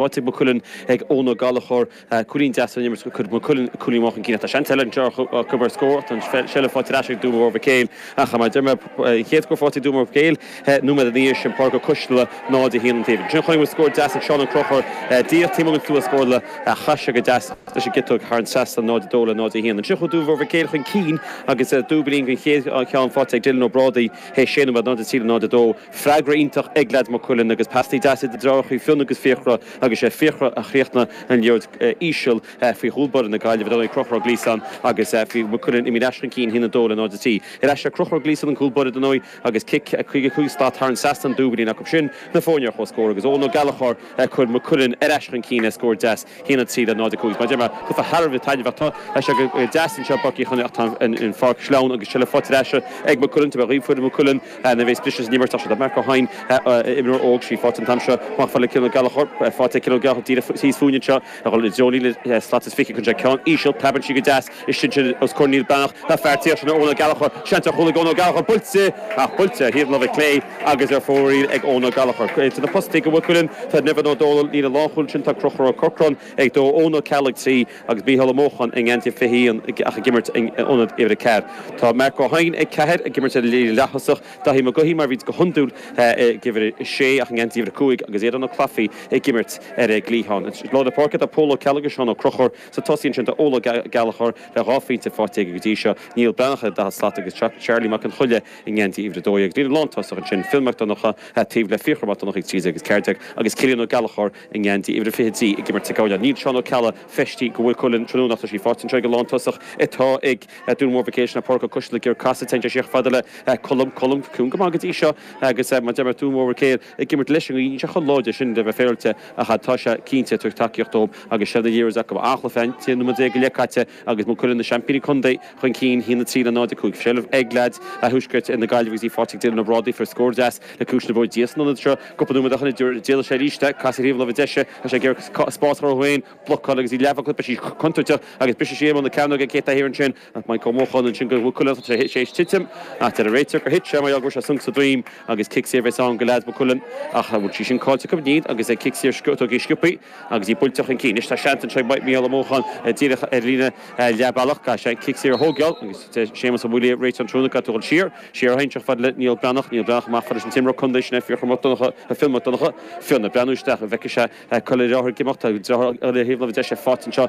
Áit ag Maigh Cuilinn ag Eoin Ó Gallchóir, cúilín deas ón imirt, cuirfidh Maigh Cuilinn cúilín amach chun cinn. Tá seans eile anseo acu ar scór ach tá an tseilbh faighte ar ais ag Dún Mór Mhic Éil ach, mar a deir mé, an chéad scór faighte ag Dún Mór Mhic Éil nóiméad ina dhiaidh sin, Pádraig Ó Coisteala, 0-1 an taobh. Ansin chonaic muid scór deas ag Seán Ó Crochúir, díreach taobh amuigh den stua scórála, ach chaith sé go deas leis an gciotóg thar an trasnán, 0-2 le 0-1. Ansin chuaigh Dún Mór Mhic Éil chun cinn agus dúiblín den chéad cheann faighte ag Dylan Ó Brádaigh théis sé nóiméad, 0-3 le 0-2. Freagra iontach ag leads Mhaigh Cuilinn agus pastaí deasa idir na driothárachaí Fionn agus Fiachra agus sé Fiachra a chríochnaigh an liathróid íseal faoi chúl báire na Gaillimhe ar ndóigh, Crochúr Gleeson agus bhí Maigh Cuilinn ar ais chun cinn 1-2 le 0-3 ar ais le Crochúr Gleeson an cúl báire dar ndóigh agus cic 55 slat thar an trasnán Dúiblín acu sin na foirne ar comhscór agus Eoghan Ó Gallachóir a chuir Maigh Cuilinn ar ais chun cinn le scór deas 1-3 le 0-5 Mar deir mé tá thar a bheith taitneamhach tá sé go deas anseo i bPáirc Uí Chionnaith ach tá an pháirc sleamhain agus tá sí faighte ar ais ag Maigh Cuilinn tabharfaidh mé daoibh foireann Mhaigh Cuilinn Nuair a bhéas briseadh san imirt tá sí ag Mark Ó hEidhin imreoir óg sí faighte an t-am seo amach fad le Cillian Ó Gallachóir faighte ag Cillian Ó Gallachóir díreach thíos fúinn anseo a dhul i dtreo líne slat is fiche sé ceann íseal preabann sí go deas isteach sin os comhair Niall Breathnach tá fear taobh istigh sin Eoin Ó Gallchóir seans ar chúl ag Eoin Ó Gallchóir buailte ach buailte ar thaobh láimhe clé agus ar fóraoil ag Eoin Ó Gallchóir idir na postaí do Mhaigh Cuilinn tá Nevin Ó Dónaill líne lánchúil sin tá Crochúr Ó Corcráin ag dó Eoin Ó Ceallaigh trí agus Mícheál Ó Mócháin i ngeansaí 21 ach ag imirt in ionad uimhir a ceathair tá Marc Ó hEidhin ag ceathair, ag imirt ar líne leaththosach, Daithí Mac Gaughey, mar a bhíonns go hiondúil, ag uimhir a sé ach i ngeansaí uimhir a cúig agus Aodán Ó Claifí ag imirt ar an gcliathán. I lár na páirce tá Pól Ó Ceallaigh agus Seán Ó Crochúir sa tosaí ansin tá Eoin Ó Gallachóir le dhá phointe faighte aige go dtí seo, Niall Breathnach ar an 40 slat agus Charlie Mac an Choiligh i ngeansaí uimhir a dó dhéag agus líne lántosach ansin, Fionn Mac Donnacha taobh le Fiachra Mac Donnacha ag 13 agus 14 agus Cillian Ó Gallachóir, i ngeansaí uimhir a 23, ag imirt sa gcúinne. Níl Seán Ó Ceallaigh, feistithe do Mhaigh Cuilinn tráthnóna, ach tá sí faighte anseo ag an lántosach atá ag Dún Mór Mhic Éil. Sin é Pádraig Ó Coisteala ag iarraidh casadh. Téann sé siar fada le Colm. Colm ciúin go maith go dtí seo agus, mar a deir mé, Dún Mór Mhic Éil ag imirt leis an ngaoth. Níl sé chomh láidir sin le bheith féaráilte, ach tá sé cinnte ag tabhairt tacaíocht dóibh agus seilbh na liathróide acu. Anchloch Finn, 13 nóiméad go leith caite. Agus Maigh Cuilinn na seaimpíní contae chun cinn, 1-3 le 0-5 seilbh ag leads Thuaisceart na Gaillimhe agus í faighte ag Dylan Ó Brádaigh a fuair scór deas le ciumhais na bróige díreach san ionad seo. Cúpla nóiméad ó shin ag iarraidh, d'éalaigh sé arís é, casadh thaobh an láimhe deise agus é ag iarraidh spás a chruthú dó féin, blocáil agus í leathbhlocáilte sí contúirteach agus briseann sí ar bhun na cearnóige ag Céta Ahern ansin. Mike Ó Mócháin ansin do Mhaigh Cuilinn agus é théis titim ach deir an réiteoir gur thit sé mar gheall go bhfuair sé sonc sa droim agus cic saor a bheas ann do leads Mhaigh Cuilinn ach bhfuil sí sin caillte acu. Níl agus an cic saor tógtha sciopthaí. Agus í buailte chun cinn anois, tá seans anseo ag Micheál Ó Mócháin díreach ar líne leathbhealach. Caithfidh sé an cic saor a thógáil agus tá Séamus Ó Maolaodha réiteoir an tráthnóna caite dul siar. Siar a théann sí fad le Niall Breathnach. Niall Breathnach amach fad leis an t-imreoir contae sin, Fiachra Mac Donnacha, Fionn Mac Donnacha. Fionn ag breathnú isteach, an bhfeicfidh sé cá bhfuil a dhriotháir ag imeacht? Tá driotháir eile ar thaobh láimhe deise faighte anseo.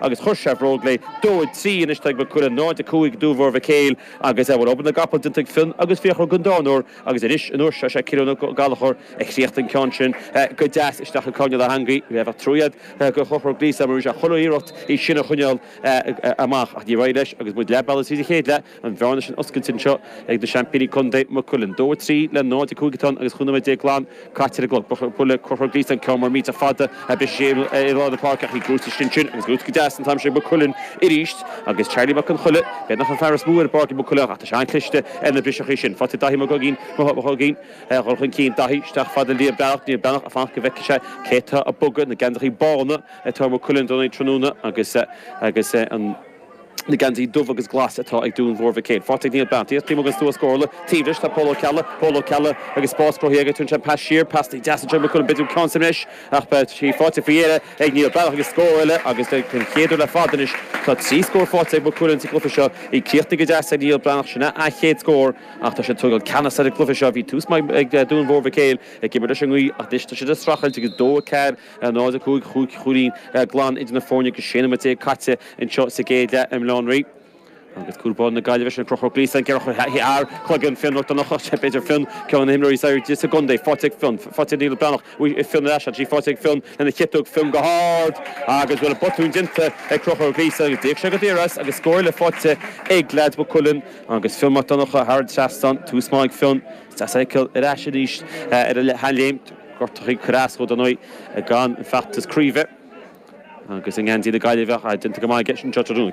agus chuir sé a bhróg léi dó a trí anois atá ag Maigh Cuilinn 0, 5 ag Dún Mhór Mhic Éil agus bhuel obair na gcapall déanta ag Fionn agus Fiachra don darna huair agus anois an uair seo is é Ciarán Ó Gallchóir a chríochnaigh an ceann sin go deas isteach i gcúinne na heangaí bheadh trua agat do Chonchúr Gleeson mar bhí sé ag chuile iarracht í sin a choinneáil amach ach níor éirigh leis agus muid leath bealaigh tríd an chéad leath. an bhearna sin oscailte anseo ag na seaimpíní contae, Maigh Cuilinn, 2, 3 le 0, 5 atá ann agus chúig nóiméad déag glan caite ar an gclog. Ba bhuille cothrom dlite an ceann mar mílte fada a briseadh ar lár na páirce ach bhí brúite isteach ansin agus buaite go deas an t-am sin ag Maigh Cuilinn arís agus Charlie Mac Conchoille, b'fhéidir nach é an fear is mó ar Pháirc Maigh Cuilinn ach tá sé an-chliste ar na briseachaí sin. Fágfaidh Daithí Mac Uiginn a dhul chun cinn, Daithí isteach chomh fada le Niall Breathnach, Niall Breathnach ag fanacht go bhfeicfidh sé cé atá ag bogadh na geansaithe bána atá ar Maigh Cuilinn i gcónaí tráthnóna agus agus an na geansaí dubh agus glas atá ag Dún Mhór Mhic Éil. Faighte ag Niall Breathnach, Dia Chliamagus Duais Chomhairle taobh leis tá Pól Ó Ceallaigh, Pól Ó Ceallaigh agus spás cruthaithe aige Tugann sé pas siar, pasanna deasa anseo ag Maigh Cuilinn B'fhéidir go ceann sa mbreis ach tá sí faighte faoi dheireadh ag Niall Breathnach agus scór eile agus den chéad uair le fada anois tá trí scór faighte ag Maigh Cuilinn sa gcluiche seo í críochnaithe go deas ag Niall Breathnach sin a a chéad scór ach tá siad ag tógáil ceannas ar an gcluiche seo bhí tús maith ag Dún Mhór Mhic Éil ag imirt leis an ngaoth ach anois tá siad ag streachailt agus 2-4 0:05, Chúig chúilín glan idir na foirne agus 16 nóiméad caite anseo sa gcéad leath i mBaile Átha an Rí. Agus cúl báire na Gaillimhe, sin Conchúr Gleeson, ag gearradh thar chloigeann Fionn Mac Donnacha, b'fhéidir Fionn, ceann de na himreoirí is airde sa gcontae, faighte ag Fionn. Faightear Niall Breathnach uaidh ag Fionn ar ais, ansin buailte ag Fionn lena chiotóg. Fionn go hard agus bhuel, botún déanta ag Conchúr Gleeson agus d'íoc sé go daor as agus scór eile faighte ag leaids Mhaigh Cuilinn agus Fionn Mac Donnacha thar an trasnán. Tús maith ag Fionn. Is deas é a fheiceáil ar ais arís ar a sheanléim. Gortuithe ag cur as dó, dar ndóigh, don fheachtas craoibhe agus i ngeansaí na Gaillimhe. Déanta go maith aige anseo tráthnóna.